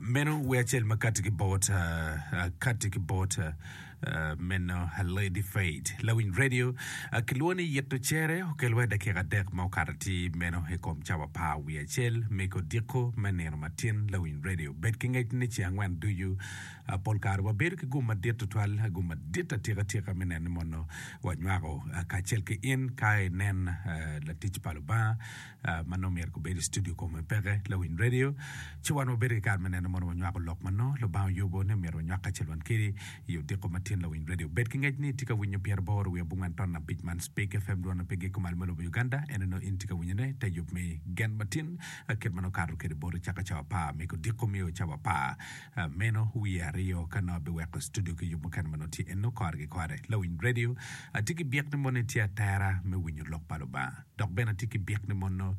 meno wer acel ma kati ki bot kati ki bot meno Lady Faith Lawiny Radio kilwongo ni yito cere okel wa dakika adek ma okato ti meno i kom cawa par wiye acel me kodiko me nino matin Lawiny Radio bed ki ngec ni ci angwen ducu pol kare wabedo ki gum madit tutwal gum madit atika tika me neno ni mono wanywako kacel ki in ka inen latic pa Lubanga ma nongo myero gubed i studio kong me peke, lawiny redio, ci wan wabedo ki kare me neno mono wanywako lok ma nongo Lubanga oyubo ni omyero wanywak kacel wan kedi i odiko ma tyen lawiny redio. Bed ki ngec ni itye ka winyo pyer aboro wiye abongwen ton abic man Speke FM dwon ma pe giko malo me lobo Uganda, en onongo in itye ka winyone i te yub me gen ma tin kit ma nongo okato kede boti caka cawa apar me odiko mio cawa apar meno wiye aryo ka nongo abiweko studio ki yub mukene ma nongo tye eno kore ki kore. Lawiny redio, atye ki byek ni mono itye atera me winyo lok pa Lubanga. Dok bene atye ki byek ni mono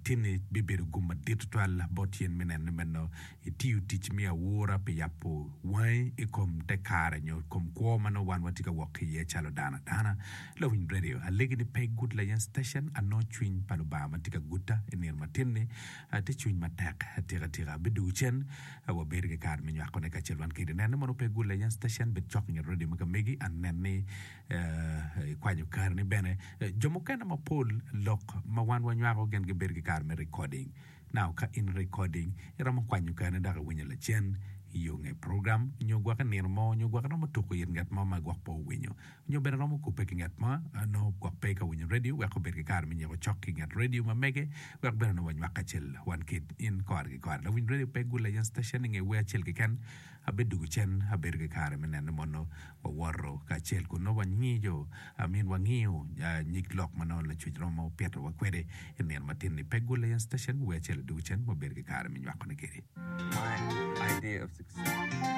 tinni bibedo gum madit tutwal bot in me neno ni meno itiyo tic me aura pi yabo wangi i kom te kare nyo i kom kwo ma nongo wan watye ka wok ki iye calo dano adana. Lawiny Radio, alegi ni pe igud layen station, anongo cwiny pa Lubanga ma tye ka guta i nino matinni tye cwiny matek tikatika. Abidwogo cen wabedo ki kare me nywakone kacel wan kedi. Nen ni mono pe igud layen station, bed cok inget radio ma ka megi, anen ni. Ikwanyo karini bene. Jo mukene mapol lok ma wan wanywako gin gibedo ki kare me recording. Now ka in recording, iromo kwanyo karini dok iwinyo lacen i yo nge program nyo gwok i nino mo nyo gwok iromo tuko it ngat mo ma gwok pe owinyo nyo bene iromo kubbe ki ngat mo ma nongo gwok pe ka winyo radio wek obed ki kare me nyiko cok ki nget radio ma mege wek bene nongo wanywak kacel wan kit in kore ki kore. Lawiny radio pe gule iye station inge wer acel keken Abidwogo cen, abedo ki kare me nene mono wawoto kacel kun nongo wangiyo, I mean wangiyo nyig lok ma nongo lacuc romo pitowa kwede i nino matin-ni. Pe gulle en station, wer acel adwogo cen wabedo ki kare me nywakone kede. My Idea of Success.